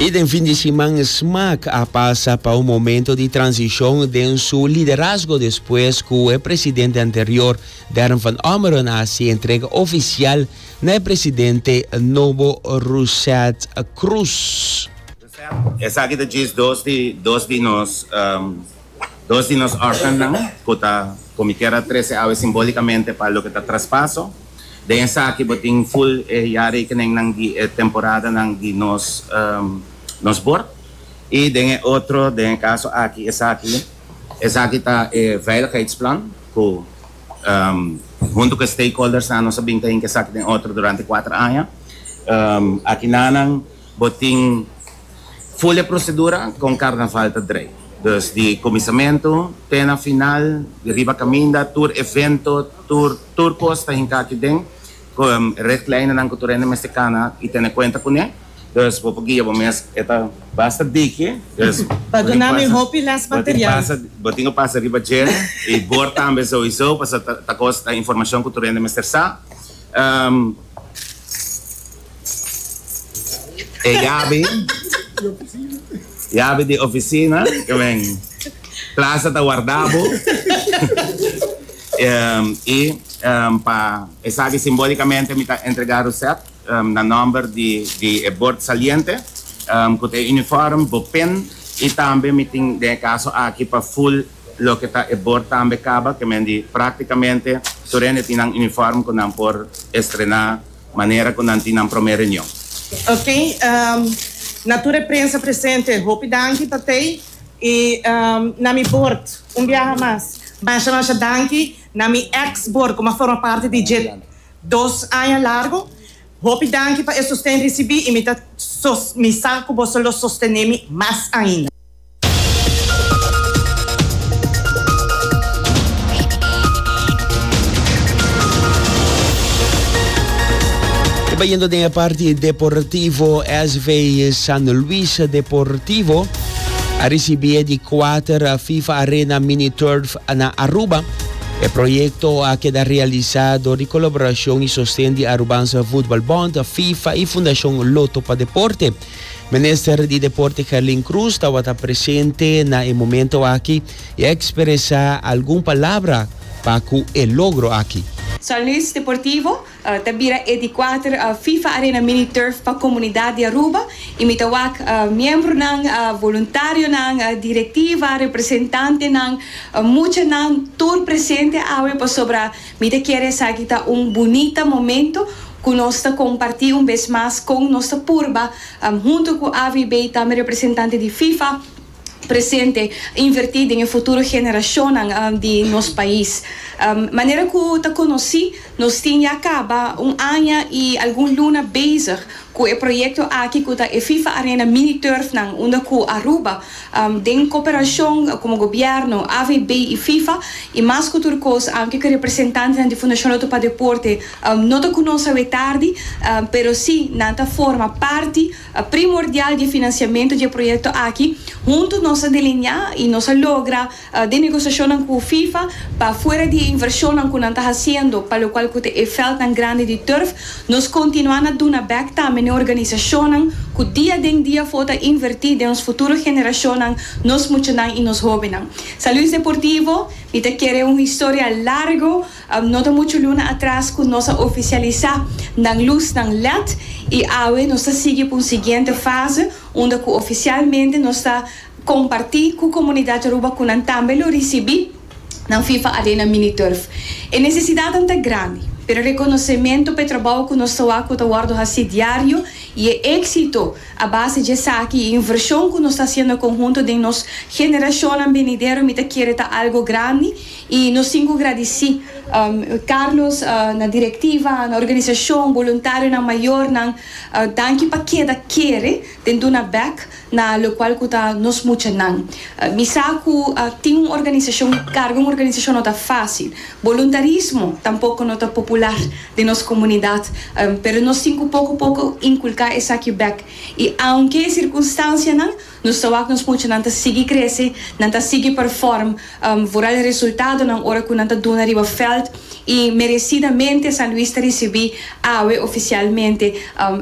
I den fin di siman Smaak a pasa pa un momento di transicion den su liderazgo despues cu e presidente anterior Dern van Ommeren a haci entrega oficial na e presidente nobo Rousset Croes. Esaki ta djis dos di nos. Dos di nos orfannan cu ta comiker a trece awe simbólicamente pa loke ta traspaso. Den esaki bo tin full e jarekeningnan di e temporadanan di nos nos bord. Y den e otro, den e caso aki, esaki, esaki ta e veiligheidsplan cu hunto cu e stakeholdersnan nos a bin ta hinca esaki den otro durante cuater aña. Aki nanan. Bo tin full e procedura con carnaval ta drei. Dus di cuminsamentu te na final, di riba caminda, tur evento, tur tur cos ta hinca aki den con richtlijnennan cu tur hende mester cana y tene cuenta cune. Dus bo por guia bo mes. E ta basta diki. Dus bo tin pasa riba dje, bo tin cu pasa riba dje y bor tambe sowiso, pasobra ta cos, ta informacion cu tur hende mester sa. E yabi, yabi di oficina cu men plaza ta warda bo y pa esaki simbolicamente mi ta entrega Rosette na nomber di e bord saliente cu ta e uniform, bo pin y tambe mi tin den e caso aki pa full loke ta e bord tambe caba cu men di practicamente tur hende tin nan uniform cu nan por estrena. Manera cu nan tin nan prome reunion. Ok, na tur e prensa presente hopi danki pa tey y na mi bord un biaha mas. Masha masha danki na mi ex bord cu m'a forma parti di dje dos aña largo. Hopi danki pa e sosten ricibi y mi ta mi sa cu boso lo sostenemi mas ainda. Bayendo den e parti deportivo, SV San Luis Deportivo a recibi e di cuater FIFA Arena Mini Turf na Aruba. E proyecto a keda realisa door di colaboracion y sosten di Arubanse Voetbalbond, FIFA y Fundacion Lotto pa Deporte. Minister di Deporte Kerlin Cruz tabata presente na e momento aki y a expresa algun palabra pa cu e logro aki. San Luis Deportivo ta bira e di kuater FIFA Arena Mini Turf pa comunidad di Aruba y mi ta wak miembronan, voluntarionan, directiva, representantenan, muchanan tur presente awe pasobra Mi ta kere esaki ta un bunita momento cu nos ta comparti un bes mas con nos ta purba, hunto cu AVB y tambe representante di FIFA presente, inverti den e futuro generacionnan di nos pais. Manera cu ta conoci, nos tin ya caba un aña y algun luna bezig cu e proyecto aki cu ta e FIFA Arena Mini Turfnan unda cu Aruba Den koperashon komo gobièrnu, AVB i Fifa, i mas ku tur kos aunke ku representantenan di Fundashon Lotto pa Deporte no ta ku nos awe tardi, pero si nan ta forma parti primordial di e finansiamentu di e proyekto aki. Huntu nos a delineá i nos a logra. di negosiashonnan ku Fifa pa fuera di e invershonnan ku nan ta hasiendo pa lokual ku ta e vèldnan grandi di turf, nos kontinuá na duna bèk tambe n'e organisashonnan ku dia den dia afó ta invertí den nos futuro generashonnan, nos muchanan i nos hóbennan. San Luis Deportivo, mi ta kere un historia largu, no ta muchu luna atras ku nos a ofisialisá nan lusnan led i awe nos ta sigui pa un siguiente fase unda ku ofisialmente nos ta. Comparti cu comunidad Aruba cu nan tambe lo ricibi nan fifa arena mini turf. E necesidadnan ta grandi, pero reconocemento p'e trabao cu nos toa cu ta wordo haci diario y e exito a base dje esaki y inversion cu nos ta haciendo conhunto den nos generacionnan benidero mi ta kere ta algo grandi y nos tin cu gradici Carlos, na directiva, na organisacion, boluntarionan mayornan, danki pa keda kere den duna bek. Na locual cu ta nos muchanan. Mi sa cu tin un organisacion y carga un organisacion no ta facil. Voluntarismo tampoco no ta popular den nos comunidad, pero nos tin cu poco poco inculca esaki bek. Y aunke e circunstancianan, nos ta wak nos muchanan ta sigui crece, nan ta sigui perform. Vooral e resultadonan ora cu nan ta duna riba veld y merecidamente San Luis ta ricibi awe oficialmente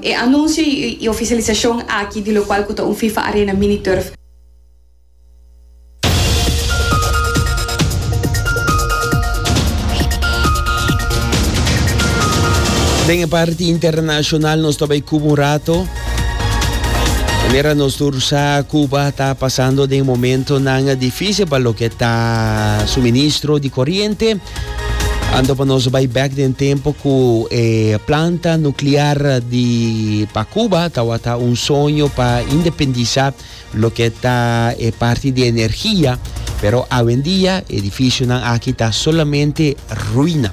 e anuncio y oficialisacion aki di locual cu ta un Fifa Arena Mini Turf. Den e parti internacional nos ta bay Cuba un rato. Manera nos tur sa, Cuba ta pasando den momentonan difícil pa loke ta suministro di corriente. Ando pa nos bai back den tempo cu e planta nuclear di pa Cuba tawata un soño pa independisa loke ta e parti di energia. Pero awendia edificionan aki ta solamente ruina.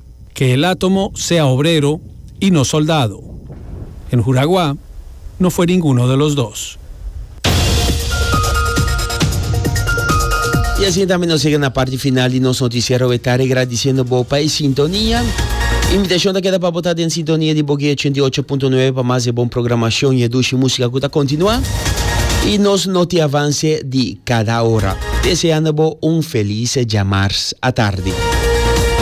Ke el a tomo sea obrero y no soldado. En Huragua no fue ninguno de los dos. Y asina tambe nos llega na parti final di nos noticiero we ta regradiciendo bo pa e sintonia. Invitacion ta keda pa bo ta den sintonia di Bogué 88.9 pa mas e bon programacion y e dushi musica cu ta continua y nos notiavance di cada ora. Deseando bo un feliz djamars atardi.